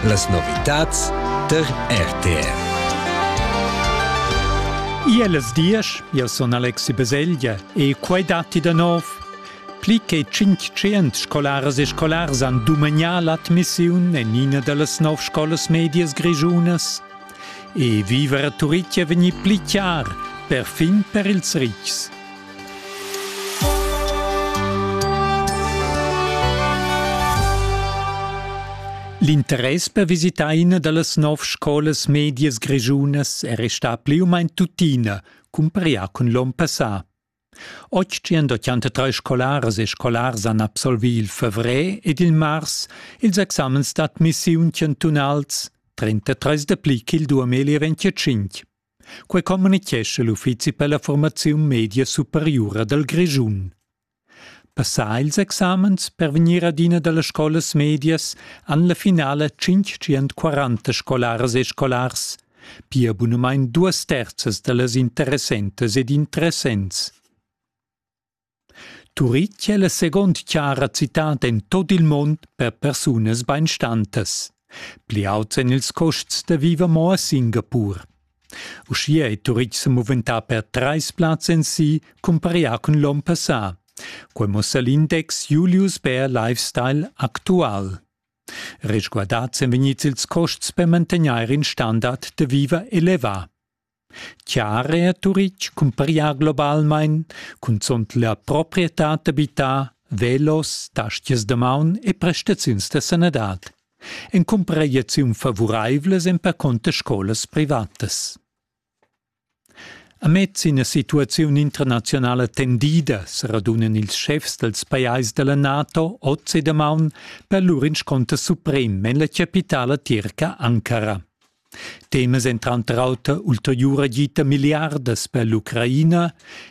Las novitads tar RTR. Ia las diesch, io sun Alexi Beseglia e quai datti da nov. Pli che 500 scolaras e scolars han dumegnià l'admissiun en ina da las nov scolas medias grischunas. E viver a Turitgia vegnì pli chiar, perfin per ils ritgs. L'interess per visitar ina da las nov scolas medias grischunas è restà pli u main tuttina, cumparià cun l'onn passà. Otschient-otschantatrais scolaras e scolars han absolvì il favrer ed il mars ils examens d'admissiun chantunals, 33 dapli ch'il duameli rentiatschintg. Quai communitgescha l'Uffizi per la formaziun media superiura dal Grischun. Passà ils examens per vegnir adina da las scolas medias han la finala 540 scolaras e scolars pia bunumein duas terzas dallas interessentas ed interessents. Turitg è la segond chara citad en tot il mund per persunas beinstantas. Pli auts en ils costs da viver mo a Singapur. Uschia è Turitg se moventà per treis plaz en si, cumparia cun l'on passà. Quei mussa l'index Julius Bär Lifestyle actual. Resguardads èn vegnids ils custs per mantegnair in standard da viver elevà. Chiare a Turitg cumparia globalmain cunzunt la proprietad d'abitar, velos, tastias da maun e prestaziuns da sanadad. En cumpragliaziun favuraivlas èn percunter scolas privatas. Amez ina situaziun internazionala tendida seradunan ils schefs dals pajais da la NATO oz e damaun per lur inscunter suprem en la chapitala tirca Ankara. Temas èn tranter auter ulteriura gita milliardas per l'Ucraina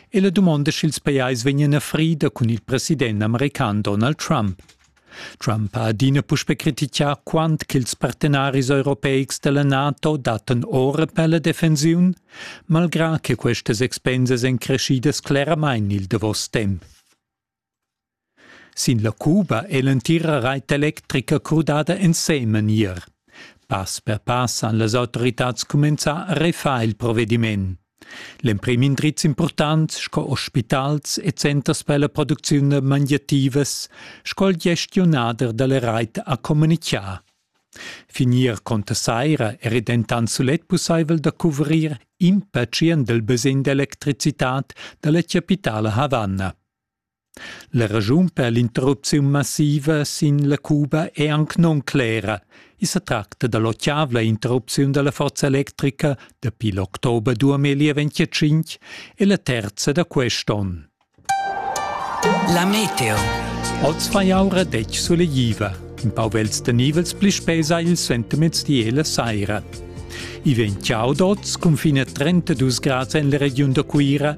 e la dumonda sch'ils pajais vegnan a frida cun il president american Donald Trump. Trump ha adina puspè crititgà quant ch'ils partenaris europeics da la NATO dattan ora per la defensiun, malgrà che questas expensas èn creschidas cleramain il davos temp. Sin la Cuba è l'entira rait electrica crudada ensemen ier. Pass per pass han las autoritads cumenzà a refar il provediment. L'emprim indriz impurtant sco ospitals e centers per la producziun mangiativas sco il gestionader dalla reit ha communichà. Finir conta saira era dentant sulet pussaivel da cuvrir in pacient del basegn d'electricitat dalla capitala Havanna. La raschun per l'interrupziun massiva sin la Cuba è anc nunclera. I sa tracta da l'otgavla interrupziun da la forza electrica dapi l'october 2025 e la terza da quest onn. La meteo. Oz fa aura detg sulegliva. In pau vels da nivels pli spesa il sentiments di e la saira. I vegn ciao d'oz cun fine 32 grads en la regiun da Cuira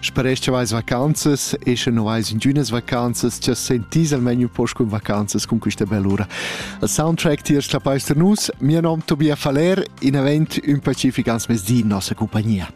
Sparesch vais vacanzas e sche non vais in dünas vacanzas, cha sentis almain un poch con vacanzas con quista bellura. Il soundtrack tiers la Peister Nus, mio nom Tobias Faller, in event un pacific ans mes di in nossa compagnia.